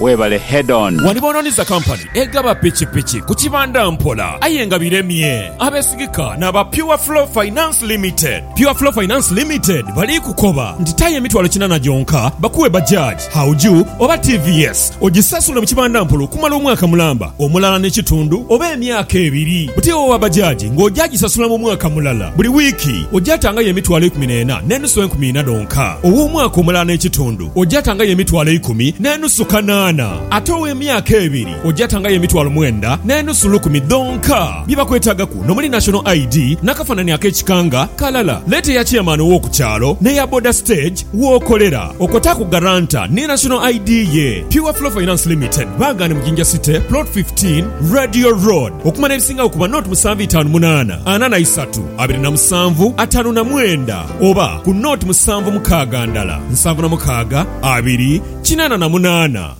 Webale head on. Wani bononiza company egaba pikipiki ku kibanda mpola aye nga biremye abesigika naba pure flow finance limited. Pure flow finance limited bali kukoba nti tayo emitwalo kinana gyonka bakuwe bajaj, hauju oba tvs ojisasule mu kibanda mpola okumala omwaka mulamba, omulala ne kitundu oba emyaka ebiri. Buti owowa bajaj nga oja jisasula mu mwaka mulala buli wiki oja tangayo emitwalo ikumi nena nenusu enkumi ina dhonka owomwaka omulala ne kitundu. ojatangayo emitwalo eikumi n'enusu kanaana, ate ow'emyaka ebiri ojatangayo emitwalo mwenda n'enusu lukumi dhonka. Bye bakwetaagaku n'omuli National ID n'akafanani ak'ekika nga kalala. Leeta eya Chairman ow'oku kyalo n'eya boda stage w'okolera. Okotaaku Guarantor ni National ID ye. Pure Flow Finance Limited baagha ni mu Jinja City, Plot fifteen, Radio Road. Okumanya ebisingagho kuba nought musanvu itaanu munaana, ana na isatu, abiri na musanvu, ataanu na mwenda. oba ku nooti musanvu mukaaga ndala, nsanvu na mukaaga, abiri, kinaana na munaana.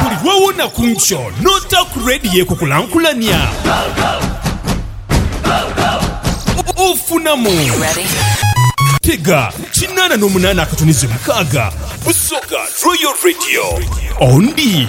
Buli lw'owona ku nkyo n'ota ku Radio Ekukulankulania, ofunamu. Tega kinaana n'omunaana akatunizi mukaaga, busoga Royal Radio. Ondi.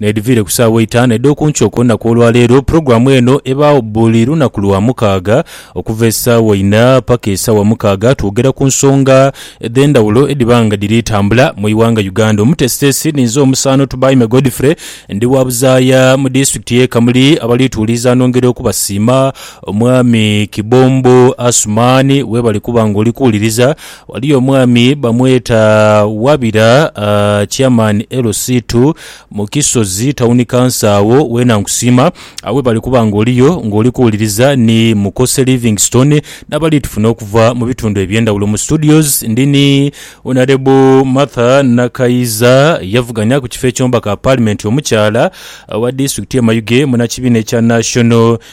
N'edhiviire ku saawa eitaanu edh'oku nkyo ku lunaku olwa leero, pulogulaamu eno ebaagho buli lunaku lwa mukaaga okuva esaawa inha paka esaawa mukaaga twogera ku nsonga edh'endhawulo edhiba nga dhiri tambula mu ighanga Uganda. Omuteesiteesi ni nze omusaano Tubaime Godfrey ndi wa buzaaya mu disitulikiti y'e Kamuli abali tuwuliriza nongera okubasiima Omwami Kibombo Asuman webale kuba nga oli kuwuliriza Ghaliyo omwami bamweta Wabira Chairman LC ii mu Kisozi Town Council agho weena nkusiima agho webale kuba nga oliyo nga oli kuwuliriza ni Mukose Livingstone n'abali tufuna okuva mu bitundu eby'endhawulo. Mu studios ndi ni Honourable Martha Nakayiza yavuganya ku kifo eky'omubaka wa Parliament omukyala owa disitulikiti y'e Mayuge munakibiina ekya National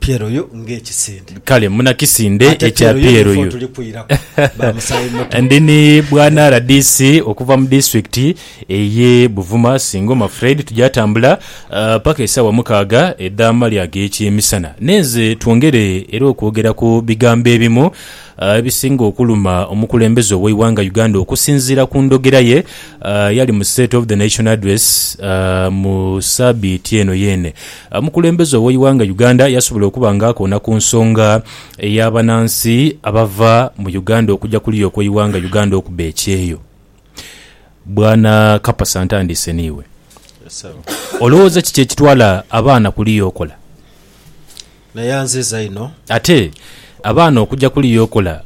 Pierre oyo nga ekisinde. Kale muna kisinde ekya Pierre oyo. Ndi ni bwana rdc okuva mu disitulikiti eye Buvuma Singoma Fred tugyatambula paka esawa mukaaga edha mali agekyemisana. Nenze twongere era okwogera ku bigambo ebimu ebisinga okuluma omukulembeze owe iwanga Uganda okusinzira ku ndhogera ye eyali mu state of the nation address mu sabiiti eno yene. Omukulembeze ow'eighanga Uganda yasobola okuba nga akoona ku nsonga ey'abanansi abava mu Uganda okuja kuliya okw'eighanga Uganda okuba ekyeyo. Bwana Kapasa ntandiise n'iwe. Olowooza kiki ekitwala abaana kuliya okola? Naya nziza inho. Ate abaana okuja kuliya okola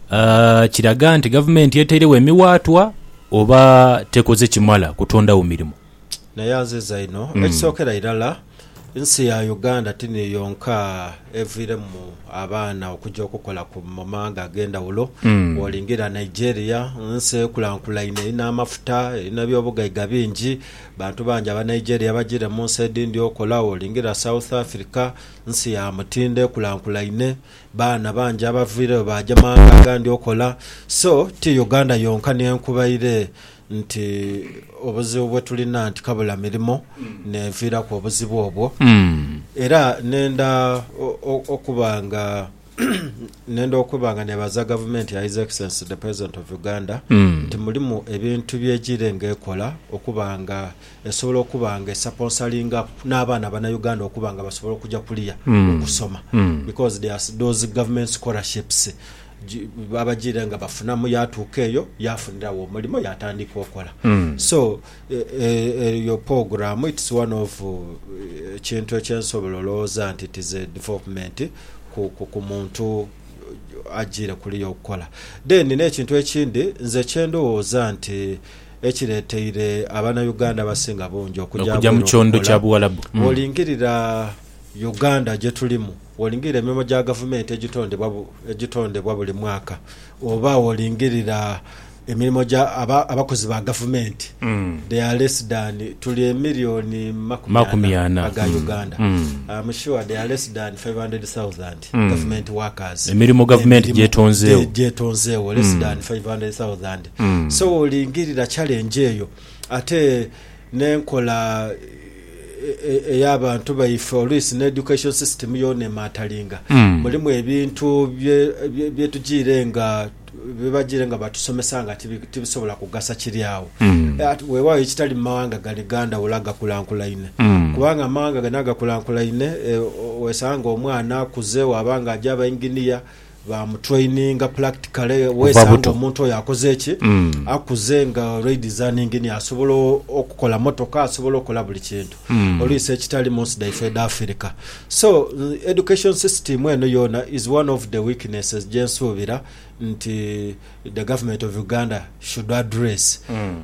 kiraga nti gavumenti etairegho emiwaatwa oba tekoze kimala kutondagho mirimo? Naye anziiza inho. Ekisookera irala, ensi ya Uganda ti niyo yonka eviiremu abaana okuja okukola mu mawanga ag'endhawulo. Bwolingiirira Nigeria, nsi ekulankulaine, erina amafuta, erina eby'obugaiga bingi. Bantu bangi Abanigeria bajiire mu nsi edhindhi okola. Bwolingiirira South Africa, nsi ya mutindo, ekulankulaine. Baana bangi abaviireyo baaja mawanga agandi okola. So, ti Uganda yonka ni enkubaire. nti obuzibu bwetulina nti kabula mirimo neviiraku obuzibu obwo era nenda okuba nga nenda okuba nga nebaza gavumenti ya His Excellency the President of Uganda mm. nti mulimu ebintu byegire nga ekola okuba nga esobola okuba nga esaponsalinga n'abaana bana Uganda okuba nga basobola okuja kuliya mm. okusoma mm. because there are those government scholarships Babagira nga bafunamu yatuuka eyo yafunira wo omulimo yatandika okola so eyo poguramu it's one of ekintu ekyensobola olowoza nti it is a development ku muntu agiire kuliya okukola. Then nekintu ekindi nze kyendowooza nti ekireteire abanauganda abasinga bungi okuja abweru okukola wolingirira Uganda gye tulimu, bw'olingirira emirimo gya gavumenti egitondebwa egitondebwa buli mwaka oba bw'olingirira emirimo gya aba abakozi ba gavumenti, they are less than tuli emiliyoni makumi Makumi ana ana. aga Mm. Uganda. Mm. I'm sure they are less than 500,000 Mm. government workers. Emirimo gavumenti Emirimo gy'etonzeewo. gye- gyetonzeewo less Mm. than 500,000. Mm. So bw'olingirira challenge eyo ate n'enkola eya bantu baife oluisi ne education system yoona emaatalinga. Mulimu ebintu bye tujiire nga bye bajiire nga batusomesa nga tibisobola kugasa kiri agho. Weewaawo ekitali mu mawanga gani gandhawulo agakulankulaine. Kubanga amawanga gani agakulankulaine, wesanga omwana akuze waaba nga aja aba engineer, ba mu traininga practically Kuva wesanga buto. omuntu oyo akoze ki Mm. akuze nga olweidizaningi ni asobola o- okukola motoka asobola okola buli kintu Mm. olwisi ekitali munsi daife eda afirika so n- education system eno yona is one of the weaknesses jensuubira nti the government of uganda should address Mm.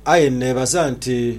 aye nebaza nti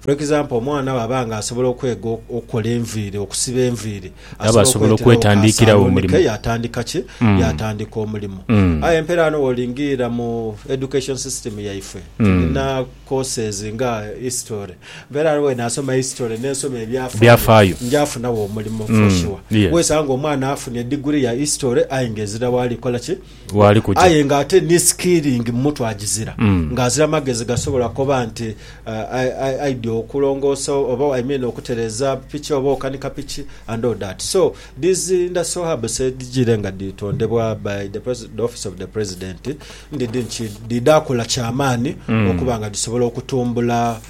For example omwana bwaba nga asobola okwega okukola enviiri, okusiba enviiri, Aba asobola asobola okweterawo ka okwetandiikirawo saluuni omulimu. ke yatandika ki? Mm. Yatandika omulimu. Mm. Aye empeera ghano wolingiirira mu education system yaife, Mm. tulina courses nga history. Empeera ghano bwenasoma history nensoma ebyafaayo, Byafaayo. nja funawo omulimu for Mm. sure. Yeah. Wesanga omwana afunye degree ya history aye nga ezira waali kukola ki? waali kuja. Aye nga ate ni skilling mu mutwe agizira, nga azira magezi gasobola koba nti ai, aidya okulongoosa oba i mean okutereza piki oba okanika piki and all that. So these industrial hubs edhijiire nga dhitondebwa by the Pres, the office of the President ndidhi nti dhidhaakola kya maani okuba nga dhisobola okutumbula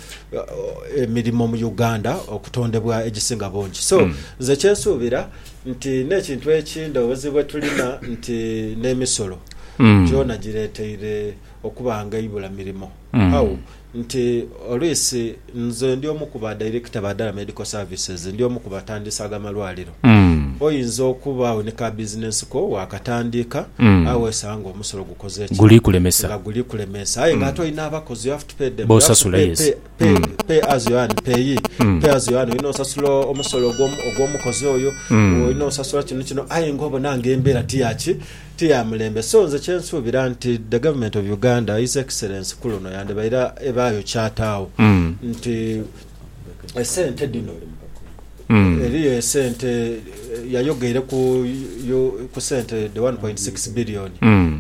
emirimo mu Uganda okutondebwa egisinga bungi. So nze kye nsuubira. nti n'ekintu ekindi obuzibu bwe tulina nti n'emisolo gyona gireeteire okuba nga eibula mirimo. How? Nti olwisi nze ndi omu ku ba dairekita ba Dala Medical Services, ndi omu ku batandiisaaga malwaliro. Oyinza okubagho ni ka bizinensi ko waakatandiika aye weesanga ng'omusolo gukoze ki? Nga guli kulemeesa. Aye ng'ate olina abakozi, you have to pay them, you have to pay, pay. Pay, pay as you earn, pay, pay as you earn. Olina osasula omusolo ogw'omu- ogw'omukozi oyo olina osasula kino kino aye nga obona nga embeera tiyaki tiyamulembe so nze kyensuubira nti the government of uganda his excellence ku luno yandibaire ebaayo kyataawo nti esente dhino eriyo esente eh, yayogeire ku yo- ku sente the 1.6 billion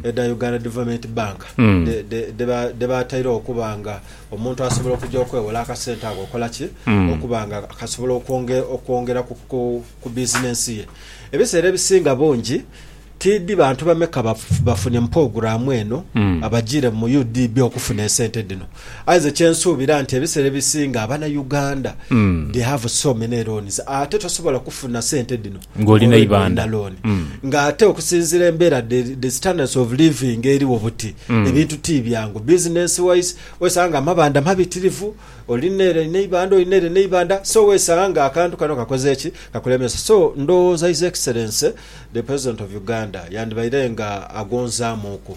edha uganda development bank de- de- dheba- dhebatairewo okuba nga omuntu asobola okuja okwewola akasente ako okola ki mm. okuba nga kasobola okwongera ku bizinensi ye ebiseera ebisinga bungi tidi bantu bameka bafune mu poguramu eno mm. abajire mu udb okufuna esente dino aize kyensuubira nti ebiseera ebisinga abana uganda mm. they have so many loans ate tosobola kufuna sente dino ng'oli n'eibandha ng'ate okusinziira embeera the standards of living eriwo buti ebintu ti byangu business wise wesanga nga amabandha mabitirivu oli nere n'eibandha oli nere n'eibandha so wesanga nga akantu kano kakoze ki kakulemesa so ndowooza his excellency the president of Uganda yandibaire nga agonzaamuuku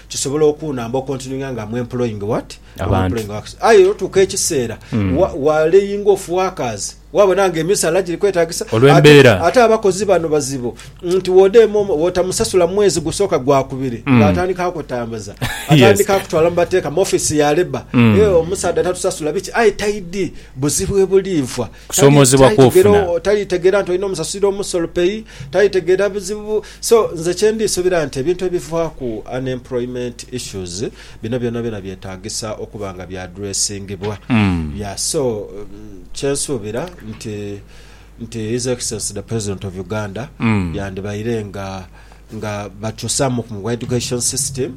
Kisobola okunamba okontinwinga nga am employing what? Am Abantu. employing wax. Aye otuuka ekiseera wa- waleyinga ofu workers wabona nga emisaala giri kwetagisa Olw'embeera. Ate- ate abakozi bano bazibu nti wodeema omu- wotamusasula mu mwezi gusooka gwakubiri nga atandika akutambuza atandika akutwala mu bateeka mu office ya labour Eh, omusaadha tatusasula biki aye taidi buzibu ebuli nfa Kusoomoozebwa kw'ofuna. Talitegera nti olina omusasulira omusolo pay, talitegera bizibu. So nze kye ndi subira nti ebintu ebivaaku unemployment issues bino byonabyona byetagisa okuba nga bya addressingibwa. Yeah so kye nsuubira nti nti His Excellency the President of Uganda yandibaire nga nga bakyusaamuku mu education system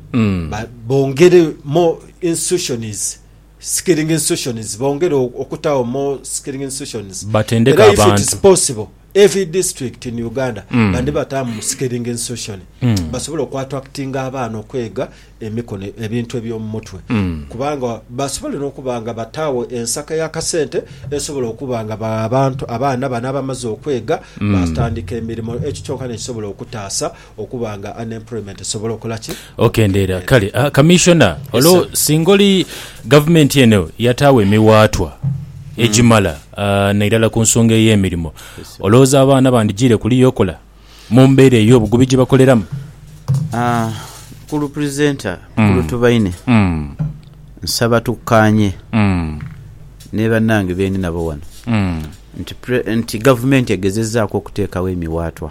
bongere more institutions skilling institutions bongere okutawo more skilling institutions Batendeke era if it is abantu. possible every district in Uganda bandibatamu skilling institution basobole oku attractinga abaana okwega emikono ebintu ebyomumutwe kubanga basobole nokuba nga batawo ensaka yakasente esobola okuba nga ba- abantu abaana bano abamaze okwega batandika emirimo ekyo kyoka nekisobola okutaasa okuba nga unemployment esobola okola ki? Okendeera. Kale Kamissiona, olwo singa oli gavumenti eno yataagho emiwaatwa egimala nairala ku nsonga ey'emirimo, olowooza abaana bandijiire kuliya okola mu mbeera ey'obugubi gye bakoleramu? Mukulu Presenter, Mukulu Tubaine, nsaba tukkaanye ni bannange be ndi nabo wano nti gavumenti egezezaaku okuteekagho emiwaatwa.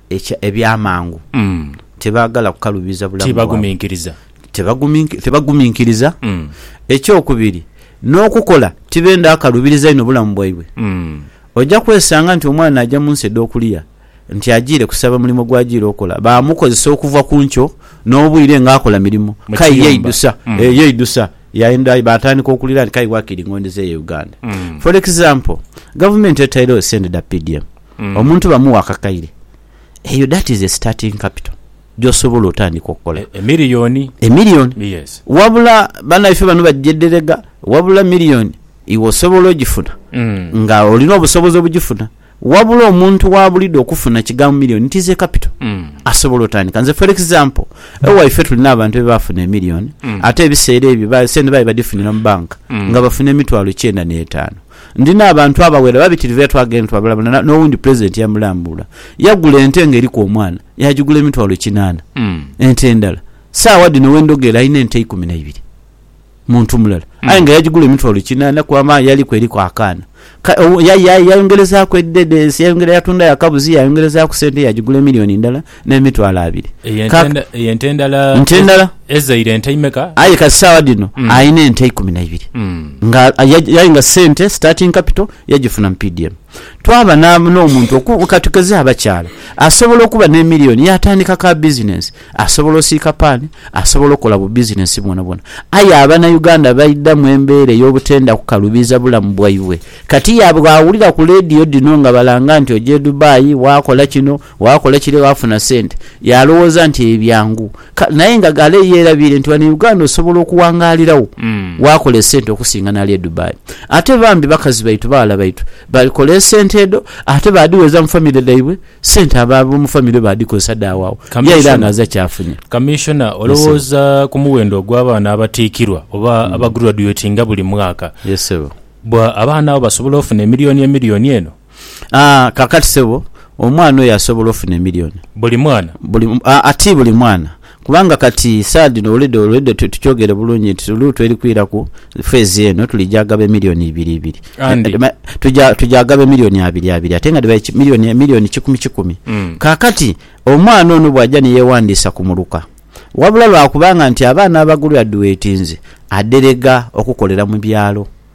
ekya, eby'amangu, tibaagala kukaluubiza bulamu bwabwe, tibaguminkiriza. tebagumink- tibaguminkiriza, Mm. eky'okubiri, n'okukola tibenda akaluubiriza inho bulamu bwaibwe. Mm. Oja kwesanga nti omwana aja mu nsi edh'okuliya nti ajiire kusaba mulimo gw'ajiire okola, baamukozesa okuva ku nkyo n'obwire nga akola mirimo, Mu k'aye kiyumba. yeidhusa, Mm. eh, yeidhusa, yaenda aye baatandika okuliira nti k'aye wakiri ng'ondhizaayo e Uganda. Mm. For example, gavumenti etairegho sente dha PDM, Omuntu bamuwa akakaire, eyo that is a starting capital gyosobola otandika okola. E million. E million. Yes. Wabula banaife bano bajedherega, wabula million iwe osobola ojifuna nga olina obusobozi obujifuna. Wabula omuntu wabulidho okufuna kigambo million it is a capital asobola otandika. Nze for example ewaife tulina abantu ebafuna e million ate ebisera ebyo sente baali badifunira mu bank nga bafuna emitwalo kyenda netano. Ndi n'abantu abawera babitirivu era twaagha ente twabulabulana n'owundi Pulezidenti yamulambuula. Yagula ente ng'eriku omwana, yaagigula emitwalo kinaana. Ente endala, Saagha dhino we ndhogera alina ente ikumi na ibiri. Muntu mulala aye nga yagigula emitwalo kinaana kuba amaye yaliku eriku akaana. Yayongerezaaku edhedensi, yayongera yatundayo akabuzi, yayongerezaaku sente yaagigula emiliyoni ndala. n'emitwalo abiri. Eyo ente endala ezaire ente imeka? Aye kati saagha dhino mm. alina ente ikumi na ibiri mm. nga aye nga sente starting capital yagifuna mu PDM. Twaba n'omuntu katukeze abakyala asobola okuba n'emiliyoni yatandika ka bizinensi, asobola osiika paani, asobola okola bu bizinensi bwonabwona. Aye abanauganda baidha mu embeera ey'obutenda kukalubiza bulamu bwaibwe. Kati yabwe awulira ku leediyo dhino nga balanga nti oja e Dubai wakola kino Waakola ekire waafuna sente. Yalowooza nti ebyo byangu. Kale naye nga ghale yeerabiire nti ghano e Uganda osobola okuwangaalirawo waakola esente okusinga n'ali e Dubai. Ate bambi bakazi baitu, baghala baitu bakola esente edho ate baadhigheeza mu famire dhaibwe, sente ab'omu famire baadhikozesa dhaagho agho ye aira nga aze kyafunye. Kamiishona, olowooza ku muwendo ogw'abaana abatiikirwa oba abagurwaduwetinga buli mwaka? Bwa abaana abo basobola ofuna emiliyoni emiliyoni eno? Aa, kaakati, ssebo, omwana oyo asobola ofuna emilioni. Buli mwana? Buli, aa, ti buli mwana. Kubanga, kati, saagha dhino oulidde, oulidde tu, tukyogere bulungi nti luutu eri kwira ku feezi eno, tuli gya ghaba emilioni ibiri ibiri. Andi. Ma, tugya, tugya ghaba emilioni abiri abiri, ate nga dhiba eki, milioni, emilioni kikumi kikumi. Mm. Kaakati, omwana ono bw'aja ni yeewandiisa ku muluka, wabula lwa kubanga nti abaana abagulwedduwetinze, adherega okukolera mu byalo.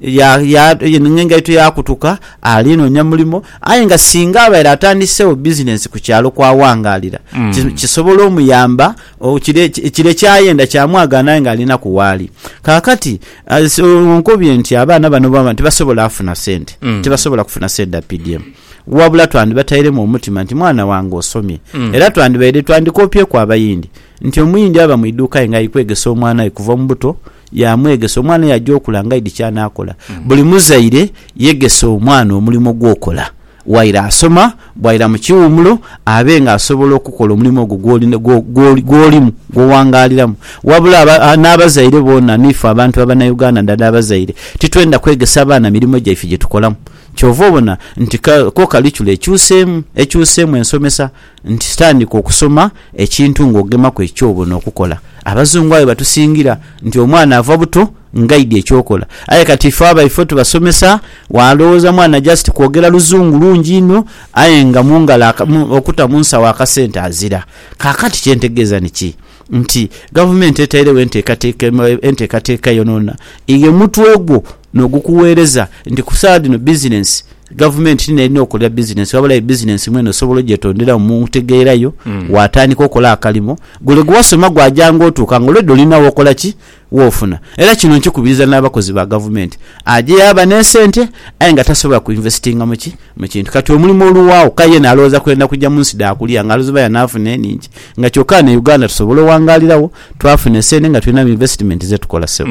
ya, ya, ng'engaito yaakutuka, ali noonya mulimo. Aye nga singa abaire atandiseegho bizinensi ku kyalo kw'aghangaalira, ki, kisobola omuyamba, o, kire, kire ky'ayenda kyamwagaana aye ng'alinaku waali. Kaakati, as, onkobye nti abaana bano baba tibasobola afuna sente, tibasobola kufuna sente dha PDM. Wabula twandibatairemu omutima nti mwana wange osomye. Era twandibaire, twandikoopyeku Abayindi, nti Omuyindi aba mu iduuka aye ng'ali kwegesa omwana we kuva mu buto, Yaamwegesa. Omwana yaja okula nga aidhi ky'anaakola. Buli muzaire yegese omwana omulimo gw'okola waire asoma, bwaira mu kiwummulo abe nga asobola okukola omulimo ogwo gw'oli, gw'olimu, gw'owangaaliramu. Wabula aba, n'abazaire boona, n'ife abantu Abanauganda nadala abazaire, titwenda kwegesa baana mirimo gyaife gye tukolamu. Kyova obona nti ko kalicula ekyuseemu, ekyuseemu ensomesa. nti tandika okusoma ekintu nga ogemaku ekyo kyoba ono okukola. Abazungu aye batusingira nti omwana ava buto ngaidhi ekyokola aye kati ife abaife tubasomesa walowooza mwana just kwogera luzungu lungi inho aye nga mungalo okuta munsawo akasente azira. Kakati kyentegeeza niki nti gavumenti etairegho entekateka entekateka yonona ighe mutwe gwo. N'ogukugheereza nti ku saagha dhino bizinensi, gavumenti ti n'erina okola bizinensi, ghabula aye bizinensi mwene osobola ogyetonderamu mu ntegeera yo, waatandika okola akalimo. Gule gwe wasoma gwaja ng'otuuka nga already olina w'okola ki? W'ofuna. Era kino nkikubiriza n'abakozi ba gavumenti. Aja yaaba n'esente aye nga tasobola ku investinga mu ki? Mu kintu. Kati omulimu oluwaagho, k'aye yena alowooza kwenda kuja mu nsi dha kuliya nga aluziba y'anaafuna enhingi. Nga kyoka ghano e Uganda tusobola owangaaliragho, twafuna esente nga tulina mu investment ze tukola ssebo.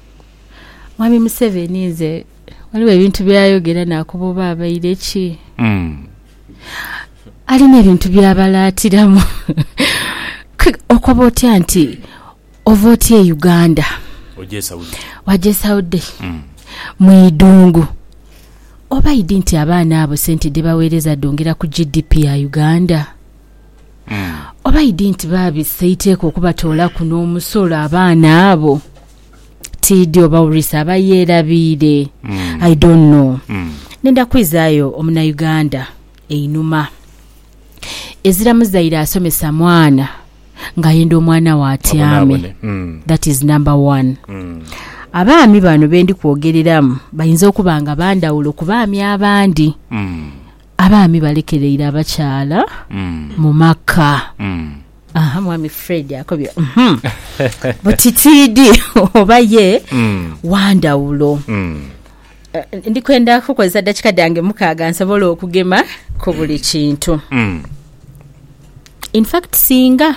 Mwami Museveni nze ghaligho ebintu byayogera nakuba oba abaire ki? Alina ebintu byabalaatiramu. Okoba otya nti ova otya e Uganda waja e Saudi mu idhungu? Oba idi nti abaana abo sente dhebaweereza dhongera ku GDP ya Uganda? Oba idi nti baabisa eiteeka okubatoolaku n'omusolo abaana abo? Tiidhi oba Urisa aba yeerabiire. I don't know. Ndenda kwizaayo Omunauganda einhuma. Ezira muzaire asomesa mwana ng'ayenda omwana we atyame. That is number one. Abaami bano be ndi kwogereramu bayinza okuba nga ba ndhawulo ku baami abandi. Abaami balekereire abakyala mu maka. Aha, Mwami Fred akobye buti tiidi oba ye wa ndhawulo. Ndi kwenda kukozesa dakika dhange mukaaga nsobole okugema ku buli kintu. In fact singa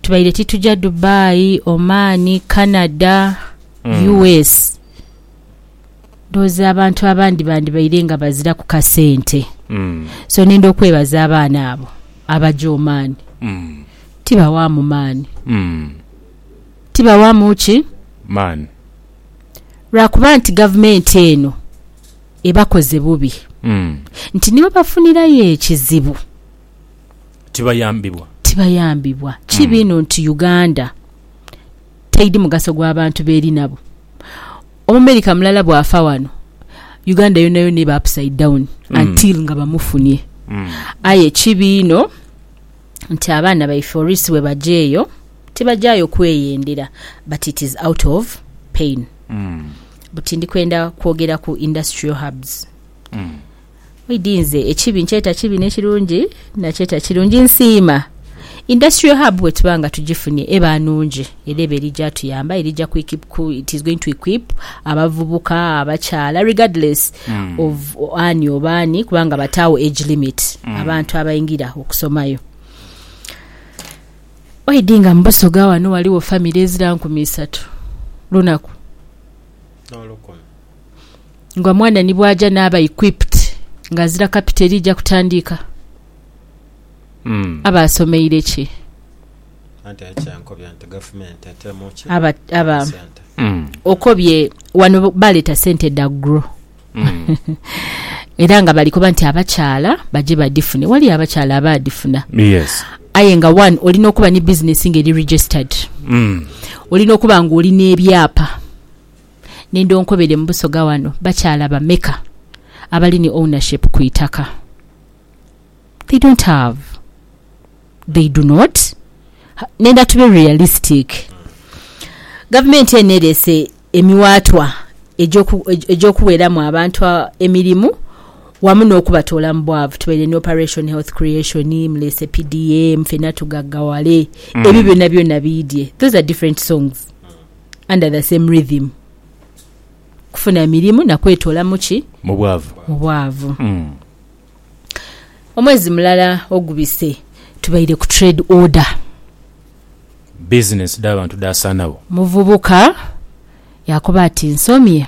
tubaire tituja Dubai, Oman, Canada, US. ndhowooza abantu abandi bandibaire nga baziraku kasente. So nenda okwebaza abaana abo abaja omaani. Tibawaamu maani. Tibawaamu ki? Maani. Lwa kuba nti gavumenti eno ebakoze bubi. Nti ni webafunirayo ekizibu. Tibayambibwa. Tibayambibwa. Kibi inho nti Uganda. Taidi mugaso gwa bantu b'eri nabo. Omumerika mulala bw'afa wano, Uganda yonayona eba upside down until nga bamufunie. Aye ekibi inho nti abaana baife orisi bwe baja eyo, tibajaayo kweyendera but it is out of pain. Buti ndi kwenda kwogera ku industrial hubs. Oidhi nze ekibi nkyeta kibi n'ekirungi nakyeta kirungi. Nsiima Industrial Hub bwetuba nga tugifunye eba nungi era eba eri gyatuyamba erija ku it is going to equip abavubuka, abakyala regardless of ani oba ani kubanga bataagho age limit abantu abaingira okusomayo. Oidhi nga mu Busoga ghano ghaligho famire ezira nkumi isatu lunaku. nga omwana ni bw'aja n'aba equipped nga azira kapito eriija kutandiika, aba asomeire ki? Anti aye kyankobya nti gavumenti eteemu ki? Aba, aba Sente. okobye wano baleeta sente dha gro era nga bali koba nti abakyala baje badhifune. Waliyo abakyala abaadhifuna. Yes. Aye nga one olina okuba ni business nga eri registered, olina okuba nga oli n'ebyapa. Nenda onkobere mu Busoga wano bakyala bameka abali ni ownership ku itaka? They don't have. They do not. Nenda tube realistic. Gavumenti eno ereese emiwaatwa egy'oku, egy'okuweramu abantu emirimu wamu n'okubatoola mu bwavu. Tubaire ni Operation Health Creation, muleese PDM, fena tugaggawale. Ebyo byona byona biidye. Those are different songs. under the same rhythm, kufuna mirimu na kwetoola mu ki? Mu bwavu. Mu bwavu. Mm. Omwezi mulala ogubise tubaire ku trade order. Bizinensi dh'abantu dhaasaanagho. Omuvubuka yaakoba ati, Nsomye.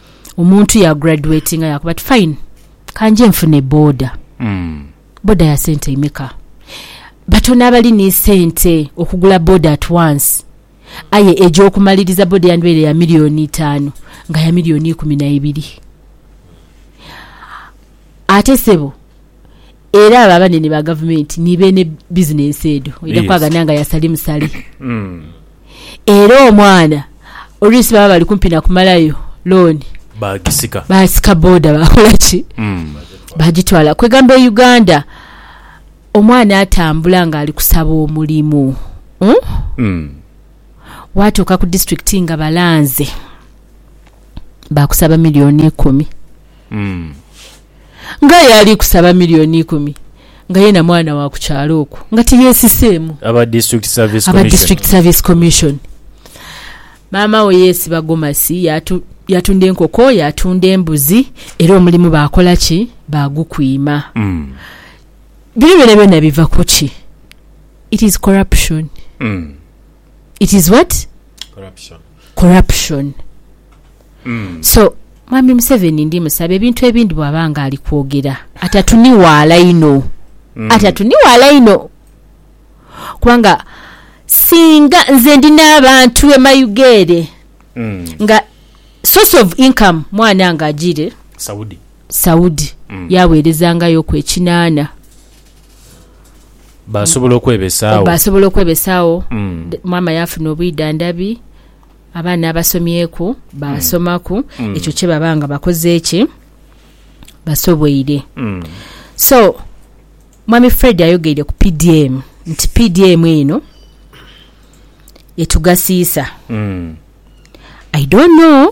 Omuntu ya graduatinga yaakoba ati, Fine, ka nje nfune boda. Boda ya sente imeka? Batono abali ni sente okugula boda at once. Aye egy'okumaliriza boda eyandibaire ya milioni itaanu nga ya milioni ikumi na ibiri. Ate ssebo. Era abo abanene ba gavumenti ni beene bizinensi edho oidha Yes. kwagana nga ya sali musale. Mm. Era omwana oluusi baba bali kumpi na kumalayo looni Baagisika. baasika boda baakola ki Mm. baagitwala. Kwegamba e Uganda omwana atambula ng'ali kusaba omulimu mm? Mm. waatuuka ku disitulikiti nga balanze baakusaba miliyoni ikumi Mm. ng'aye ali kusaba million ikumi nga yena mwana wa ku kyalo okwo nga tiyesiseemu. Aba District Service Aba Commission. District Service Commission. Maama we yeesiba gomasi, yaatu, yaatunda enkoko, yaatunda embuzi, era omulimu baakola ki? Baagukwima. Bino byonabyona biva ku ki? It is corruption. it is what corruption so mwami museveni ndi musaba ebintu ebindi bwaba nga ali kwogera atatuniwaala inho atatuniwaala inho kubanga singa nze ndi n'abantu emayiga ere nga source of income mwana nga ajire saudi yawerezangayo ku ekinana Baasobola okwebesaagho. Baasobola okwebesaagho. Maama yaafuna obwidhandhabi, abaana abasomyeku baasomaku, ekyo kye baba nga bakoze ki? Basoboire. So, Mwami Fred ayogeire ku PDM nti PDM eno etugasiisa. I don't know.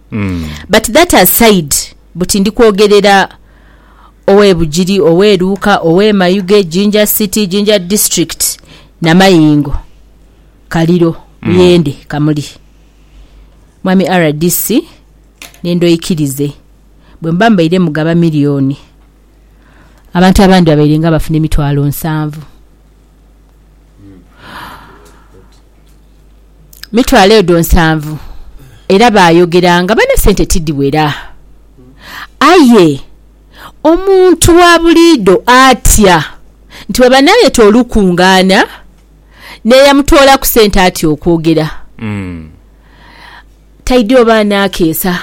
But that aside buti ndi kwogerera ow'e Bugiri, ow'e Luuka, ow'e Mayuge, Jinja City, Jinja District, Namayingo, Kaliro, Buyende, Kamuli. Mwami rdc nenda oikirize bwe muba mubaire mugaba million, abantu abandi babairenga bafuna emitwalo nsanvu. mitwalo edho nsanvu era baayogera nga bane sente tidhiwera. Aye omuntu wa buliidho atya nti bwaba naayeta olukungaana n'eyamutoolaku sente atya okwogera? Taidhi oba anaakeesa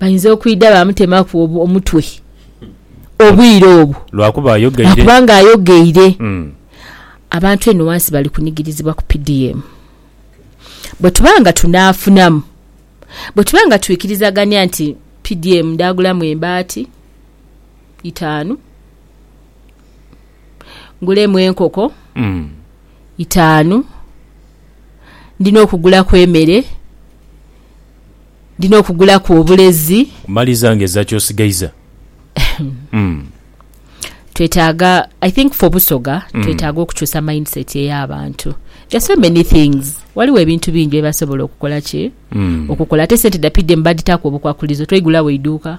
bainza okwidha baamutemaku omutwe obwire obwo lwakuba ng'ayogeire. Abantu eno ghansi bali kunigirizibwa ku PDM. Bwe tuba nga tunaafunamu, bwe tuba nga twikirizagania nti PDM ndaagulamu embaati itaanu, ngulemu enkoko itaanu, ndi n'okugulaku emere, ndi n'okugulaku obulezi. Maliza nga eza ky'osigaiza. Twetaaga, I think for Busoga, twetaaga okukyusa mindset ey'abantu. There are so many things. Waliwo ebintu bingi bye basobola okukola ki? Okukola. Ate sente dha PDM badhitaaku obukwakulizo, twaigulawo eiduuka.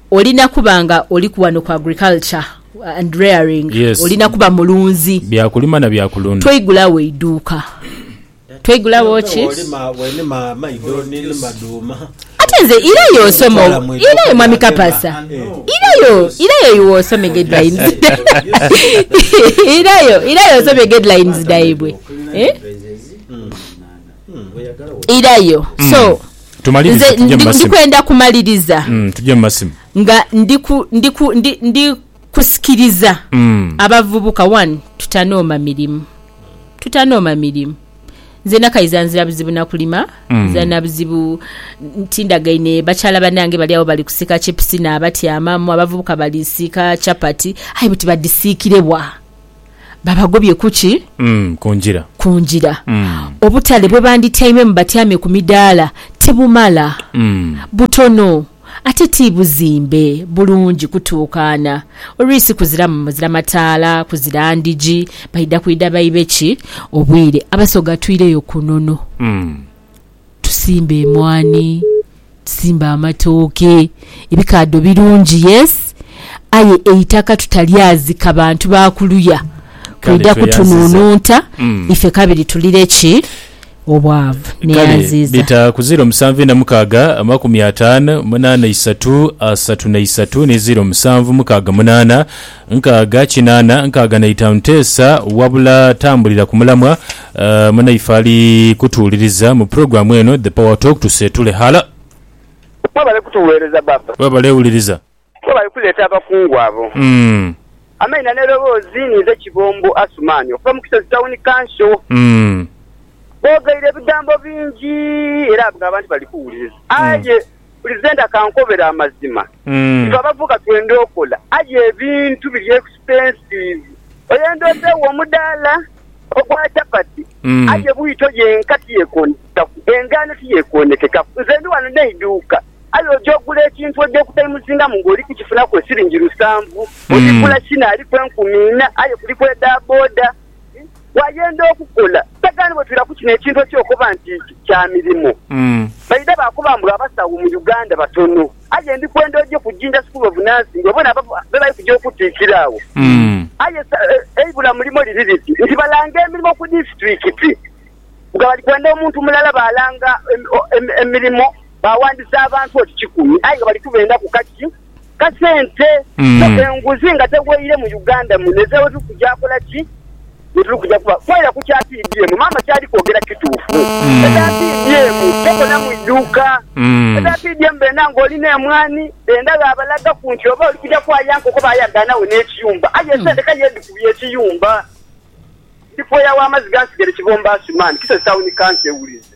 Olina kuba nga oli ku wano ku agriculture and rearing, olina kuba mulunzi. Bya kulima na bya kulunda. Twaigula wo eiduuka. Twaigula wo ki? Ate nze irayo osome irayo mwami Kapasa irayo irayo iwe osome guidelines irayo irayo osome guidelines dhaibwe. irayo so nze ndikwenda kumaliriza mm, nga ndikusikiriza mm. abavubuka one tutanooma mirimu tutanooma mirimu nze nakaiza nzira buzibu nakulima mm. nzira nabuzibu tindagaine bakyala banange bali awo bali kusika chipusi nabatyamamu abavubuka balisiika chapati aye buti badisiikirebwa babagobye ku ki? Mm, ku ngira. Ku ngira. Mm. Obutale bwe bandityaimemu batyame ku midaala tibumala. Mm. Butono. Ate ti buzimbe bulungi kutuukaana. Olwisi kuziramu, muzira mataala, kuzira ndhigi, baidha kwidha baibe ki obwire? Abasoga twire yo ku nono. Mm. tusimba emwani, tusimba amatooke, ebikaadho birungi yes aye eitaka tutalyazika bantu ba kuluya kwidha kutununu nta ife kabiri tulire ki? Obwavu. Neyanziiza. Kale bita ku ziiro musanvu ina mukaaga amakumi ataanu munaana isatu asatu na isatu ni ziiro musanvu mukaaga munaana nkaaga kinaana nkaaga na itaanu teesa wabula tambulira ku mulamwa Munaife ali kutuwuliriza mu pulogulaamu eno The Power Talk, tuseetule ghala. Webale kutuweereza Baaba. Webale wuliriza. Webale kuleeta abakungu abo. Amaina n'eroboozi ni nze Kibombo Asuman okuva mu Kisozi Town Council. Boogeire ebigambo bingi era abantu bali kuwuliriza aye buli zenda kankobere amazima ife abavubuka twenda okola aye ebintu biri expensive oyenda otewo omudala ogwa chapati aye bwito yenka tiyekonekekaku engano tiyekonekekaku nze ndi wano neiduuka aye oja ogula ekintu oja okutaimuzingamu nga oli kukifunaku esiringi lusanvu oligula kino aliku enkumi ina aye kuliku eda boda bw'ayenda okukola. Sagani bwe twira ku kino ekintu eky'okukoba nti kya mirimo, baidha baakoba mbu abasawo mu Uganda batono. Aye ndi kwenda oje ku Jinja School of Nursing obone abo be bali kuja okutiikira agho. Aye eibula mulimo liri liti nti balanga emirimo ku disitulikiti nga bali kwenda omuntu mulala. Baalanga emirimo baawandisa abantu oti kikumi aye nga bali kubeendaku kaki? kasente so Mm. enguzi nga tegweire mu Uganda muno ezira wetuli kuja kola ki wetuli kuja kuba kwera ku kya PDM maama kyali kwogera kituufu Mm. eza PDM tokolamu iduuka Mm. eza PDM benda nga olina emwani benda ghabalagaku nti oba oli kuja kwaya nkoko bayagaanagho n'ekiyumba aye esente ka yedhikubye ekiyumba ndi pweya wa mazi gansigere kibombaasi man kisozi town council ewulize.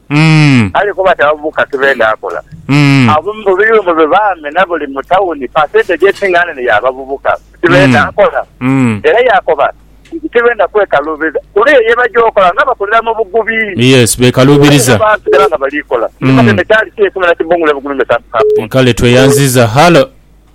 Kale kuba taghamu ka kibenda akola. Abamu mu biyumba bye baame na buli mu tauni, pasenteji esinga nene ya bavubuka kibenda akola. Era yaakoba nti kibenda kwekaluubiriza kuba eyo ye baja okola nga bakolera mu bugubi. Aye era baasigala nga bali kola. Ndi Matembe Charles, Eisomero lya Kibungulu e Bugulumbe Sub County. Kale tweyanziza. Halo.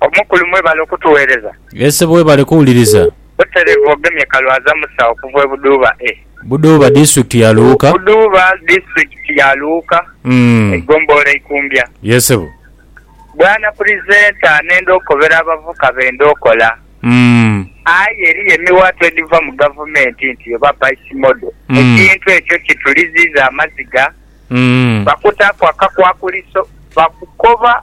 Omukulu mwebale okutuwereza. Yee sebo webale kuwuliriza. Buterevu ogemye kalwaza musa okuva ebudhuuba e. Budhuuba district ya luuka. Budhuuba district ya luuka eigombolola eikumbya. Yee sebo. Bwana purizenta nenda okobera abavuka benda okola aye eriyo emiwaatwa ediva mu gavumenti nti eba base model ekintu ekyo kituliziiza amaziga bakutaaku akakwakuliso bakukoba.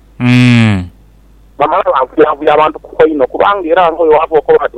Umm. Bamala banvuyanvuya abantu kubo inho, kubanga era nga bwe waabooka oba bati